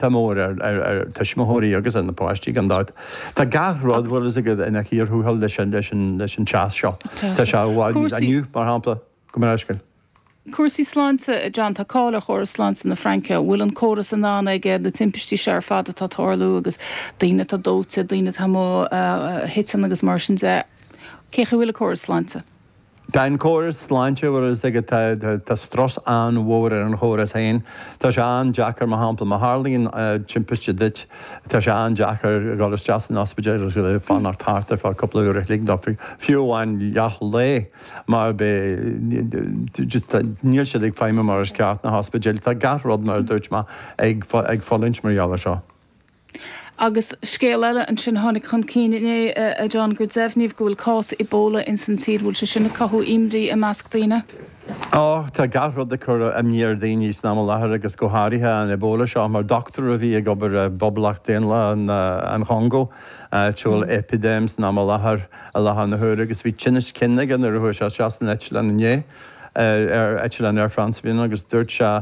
Tá mór ar tuismitheoirí agus ar na páistí gan dabht. Tá gach rud bhfuil fhios agat ina chíor thuathail leis an teas seo. Tá sé i bhfad níos, inniu mar shampla, go mbeadh scil. Cúrsaí sláinte, a John, tá cáil ar chóras sláinte na Fraince. An bhfuil an córas in ann ag na timpistí seo ar fad atá ag tarlú agus daoine atá dóite, daoine atá amuigh a thiteann agus mar sin de. Cén chaoi a bhfuil an córas sláinte? Tá an córas sláinte mar is ag tá tá strus an-mhór ar an chóras féin. Tá sé an-deacair mar shampla má tharlaíonn timpiste duit, tá sé an-deacair dul isteach san ospidéal gan fanacht thart ar feadh cúpla uair a chloig nó fiú amháin leath lae mar beidh just níl siad ag feidhmiú mar is ceart na hospidéil. Tá gach rud mar a dúirt mé ag fulaingt mar gheall air seo. Agus scéal eile ansin a tháinig chun cinn inné, a John, gur deimhníodh go bhfuil cás Ebola ins an tír. An bhfuil sé sin ag cothú imní i measc daoine? Ó, tá gach rud ag cur imní ar dhaoine san am i láthair agus go háirithe an Ebola seo. Mar dochtúir a bhí ag obair i bPoblacht Dhaonlathach an Chongó, áit a bhfuil eipidéim san am i láthair, i láthair na huaire agus bhí tinneas cinn aige nuair a chuaigh sé isteach san eitleán inné, ar eitleán Air France a bhí ann, agus dúirt sé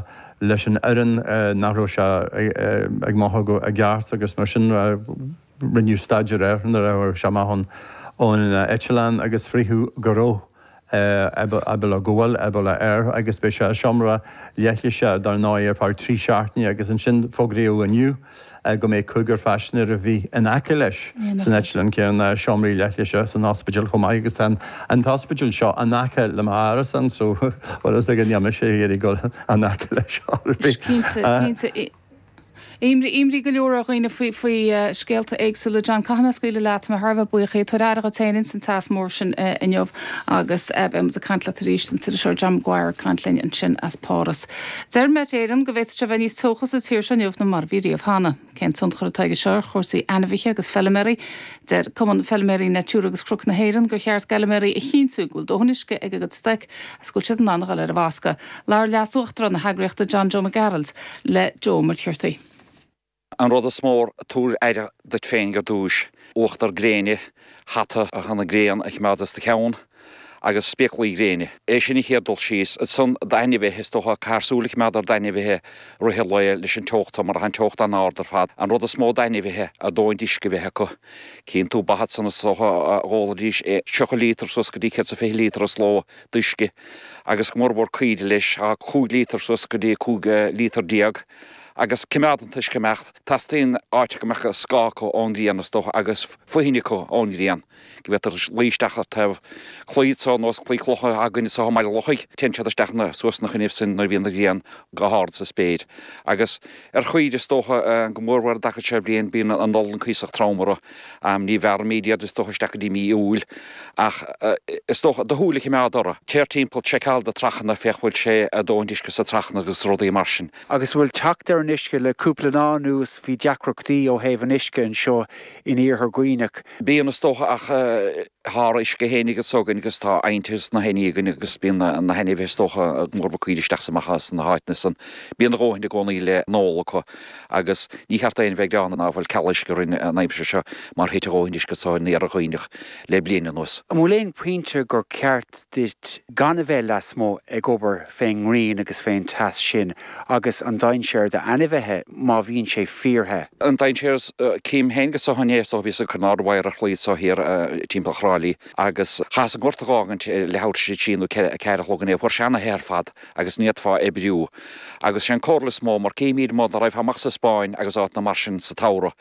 leis an fhoireann nach raibh sé ag mothú i gceart agus mar sin rinneadh staidéar air nuair a tháinig sé amach ón eitleán agus fritheadh go raibh Ebola, go bhfuil, Ebola air agus beidh sé i seomra leithlise dar ndóigh ar feadh trí seachtaine agus ansin fógraíodh inniu. go mbeidh cúigear paisinéirí a bhí in aice leis san eitleán céanna i seomraí leithlise san ospidéal chomh maith agus tá an t-ospidéal seo in aice le m'árasán so bhuel is dóigh go ndéanfaidh mise iarraidh dul in aice leis ar bith. Cinnte, cinnte. Imní go leor ar dhaoine faoi scéalta éagsúla. John, caithfidh mé a scaoileadh leat, tá mé thar a bheith buíoch. Tabhair aire dhuit féin ins an teas mór sin inniu agus beidh muid ag caint leat arís. An t-iriseoir John Maguire ag caint linn ansin as Páras. Deir Met Éireann go bhféadfadh sé a bheith níos teocha sa tír seo inniu na mar a bhí riamh cheana. Cén tionchar atá aige seo ar chúrsaí ainmhithe agus feilméaraí? Deir Cumann Feilméaraí Natura agus Cnoc na hÉireann gur cheart d'fheilméaraí a chinntiú go bhfuil dóthain uisce ag a gcuid stoic agus go bhfuil siad in ann a dhul ar an bhfoscadh. Labhair Leas-Uachtarán na heagraíochta John Joe Mac Gearailt le Joe McCurtain. An rud is mó, tabhair aire duit féin ar dtúis, uachtar gréine, hata chun an ghrian a choimeád as do cheann, agus spéaclaí gréine. É sin an chéad rud. Ansan d'ainmhithe, is dócha. Caithfear súil a choimeád ar d'ainmhithe i rith an lae leis an teocht mar atá an teocht an-ard ar fad. An rud is mó d'ainmhithe, a ndóthain uisce a bheith acu. Cíonn tú ba ansan is dócha go n-ólfaidís 30 líotar suas go dtí 120 líotar sa ló d'uisce, agus go mórmhór caoire leis, 5 líotar suas go dtí 15 líotar. agus coimeád an t-uisce ag imeacht. Teastaíonn áit go mbeadh scáth acu ón ngrian, is dócha, agus foithin acu ón ngrian, go bhféadfadh siad luí isteach ar thaobh claí ar nós claí clocha againne anso i mBaile an Lochaigh, téann siad isteach ann nó suas ina choinnibh sin nuair a bhíonn an ghrian go hard sa spéir. Agus ar chaoirigh, is dócha, go mór mhór i dtaca seo bhliain, bíonn an olann cuíosach trom orthu. Ní bhearraimid iad is dócha isteach go dtí mí Iúil ach is dócha, do shúil a choimeád orthu. Téir timpeall, seiceáil do trachanna, féach bhfuil sé a dhóthaint uisce sa trachanna agus rudaí mar sin. Agus bhfuil teacht ar an uisce? Le cúpla lá anuas bhí deacrachtaí ó thaobh an uisce anseo in Iarthar Dhuibhneach. Bíonn is dócha ach Tá ár n-uisce féinig anso againn agus tá abhainte is na haibhní againn agus bíonn na hainmhithe is dócha go mór mhór caoirigh isteach is amach as na háiteanna san. Bíonn a dhóthain i gcónaí le n-ól acu agus ní cheart d'éinne bheith ag gearán go bhfuil ceal uisce orainn an aimsir seo mar thit a dhóthain uisce anso in Iarthar Dhuibhneach le bliain anuas. An bhfuil aon phointe gur ceart duit gan a bheith lasmuigh ag obair fén ngrian agus fén teas sin agus an dainséar d'ainmhithe má bhíonn sé fíorthe. An dainséar is, cím féinig anso inné so bhíos ag cur in airde wire ar chlaí anso thoir timpeall Thrá Lí agus chaitheas an gort a dh'fhágaint leathuair tar éis a trí nó a ceathair a chlog inné. Fuair sé ana-the ar fad agus ní fhéadfá oibriú agus sé an comhairle is mó mar címíd mo dá raghfá amach sa Spáinn agus áiteanna mar sin sa tsamhradh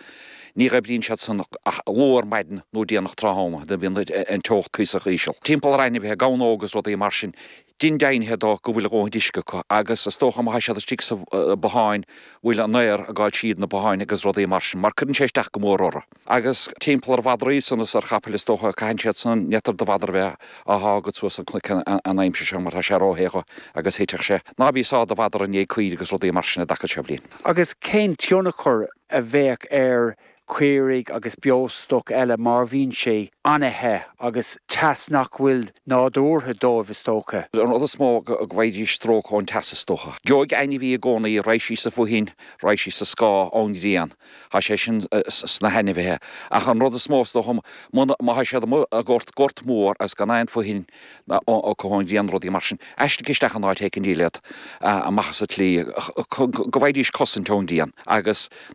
Ní oibríonn siad san ach luath ar maidin nó déanach tráthnóna nuair a bhíonn an teocht cuíosach íseal. Timpeall ar ainmhithe, gamhna óga is rudaí mar sin, déan deimhnithe dó go bhfuil a dhóthaint uisce acu agus is dócha má tá siad istigh sa bhothán bhfuil an aer ag gabháil tríd na botháin agus rudaí mar sin mar cuireann sé isteach go mór orthu. Agus timpeall ar mhadraí san is ar chapaill is dócha, caitheann siad san ní féidir do mhadra bheith á shá agat suas an cnoc an aimsir seo mar tá sé ró-the dhó agus thitfeadh sé. Ná bí ag sá do mhadra i ndiaidh caoirigh agus rudaí mar sin i dtaca seo bhliain. Agus cén tionchar a bheadh ar chaoirigh agus beostoc eile mar bhíonn sé an-the agus teas nach bhfuil nádúrtha dóibh is dócha. An rud is mó go bhfaighidís stróc ón teas is dócha. Gheobhaidh ainmhí i gcónaí raghaidh sí sa bhfoithin, raghaidh sí sa scáth ón ghrian, tá sé sin sna hainmhithe, ach an rud is mó is dócha muna, má tá siad amuigh i ngort, gort mór agus gan aon foithin acu ón ghrian, rudaí mar sin, aistrigh isteach in áit éicint iad amach sa tslí go bhfaighidís cosaint ón ghrian agus.